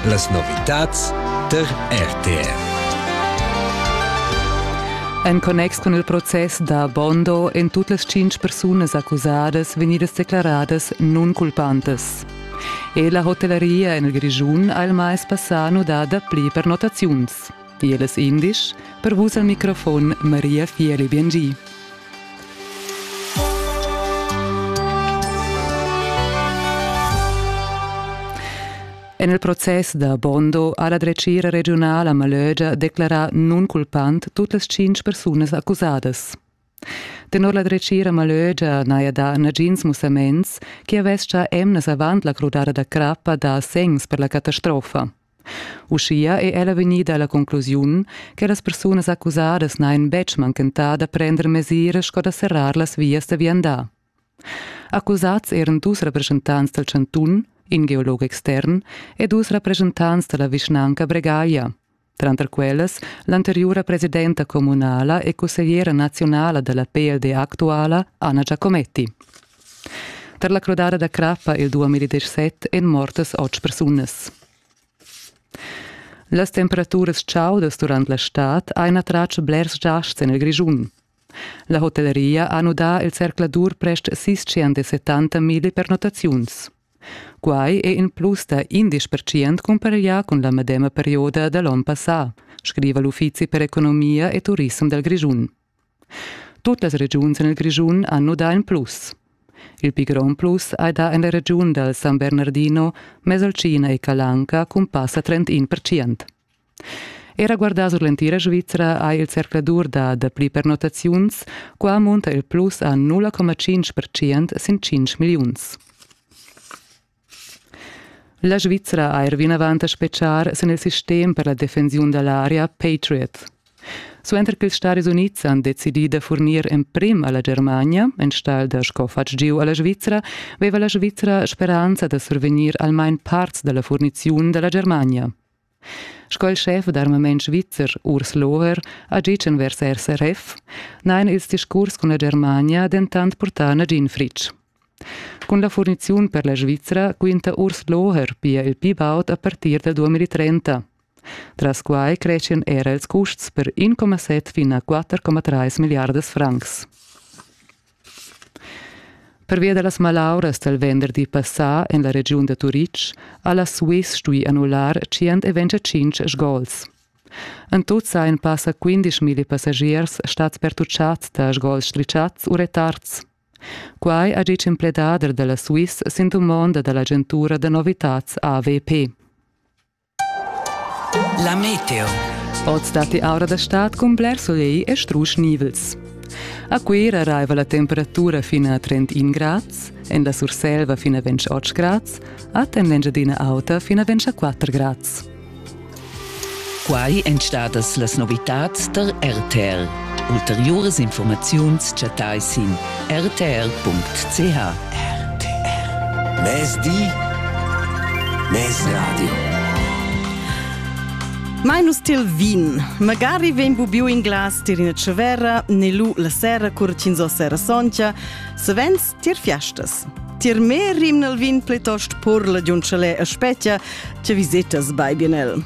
Las novitads tar RTR. En connex cun il process da Bondo èn tut las tschintg persunas accusadas vegnidas declaradas nunculpantas. E la hotellaria en il Grischun ha il mais passà nudà dapli pernottaziuns. Tiel es indisch per vus al microfon Maria Fieli Biengi. En il process da Bondo ha la dretgira regiunala Malögia declarà nunculpant tut las cinc persunas accusadas. Tenor la dretgira malögia n'haja dà nagins mussaments chi avescha emnas avant la crudada da crappa dà segns per la catastrofa. Uschia è ella vegnida alla conclusiun che las persunas accusadas n'hajan betg manchentà da prender mesiras sco da serrar las vias da viandar. Accusats eran dus representants dal chantun, in geolog extern, e dus representants da la vischnanca Bregaglia. tranter quellas l'anteriura presidenta communala e consigliera nazionala della PLD actuala Anna Giacometti. Per la crodada da crappa il 2017 èn mortas otg persunas. Las temperaturas chaudas durant la stad ein attratg blers giasts en il Grischun. La hotelleria ha nudà il zercladur prest sis 70.000 pernottaziuns. Quai è in plus da indesch percent cumpareglià cun la medema perioda da l'onn passà, scriva l'Uffizi per economia e turissem dal Grischun. Tut las regiuns en il Grischun han nudà in plus. Il pli grond plus hai dà en la regiun dal San Bernardino, Mesolcina e Calanca cun passa 31 percent. Era guardà sur l'entira Svizra ha il zercladur da dapli pernottaziuns. Qua munta il plus a 0,5% sin 5 milliuns. La Svizra ha er vinavant a spetgar sin il sistem per la defensiun da l'aria Patriot. Suenter ch'ils Stadis Unids han decidì da furnir emprim a la Germania, enstagl da sco fatg giu a la Svizra, veva la Svizra speranza da survegnir almain parts da la furniziun da la Germania. Sco il schef d'armament svizzer Urs Loher ha gitg envers SRF, n'hain ils discurs cun la Germania dentant purtà nagin fritg. Cun la furniziun per la Svizra quinta Urs Loher pia il pi baud a partir da 2030. Tras quai creschian era ils custs per 1,7 fin a 4,3 milliardas francs. Pervia da las malauras dal venderdi passà en la regiun da Turitg ha la Swiss stuì annullar 125 sgols. En tut sajan passa 15.000 passagiers stads pertutschads da sgols strischads u retards. Quai ha ditg in pledader da la Swiss sin dumonda da l'agentura da novitads AVP. La meteo. Oz datti aura da stad cun bler solegl e strusch nivels. A Cuira raiva la temperatura fin a 31 grads, en la Surselva fin a 28 grads, a temp d'Engiadina Auta fin a 24 grads. Quai èn stadas las novitads tar RTL. Ulteriuras infurmaziuns chattai sin rtr.ch. RTR. Mezdi, mezradio. Mai nus til vin. Magari vegn bubiu in glas tir ina tschevera, ne lu la sera cur ch'ins o sera soncia, savens tir fiastas. Tir me rim nel vin plitost purla di un chalè a spetgia, che visetas bai bien el.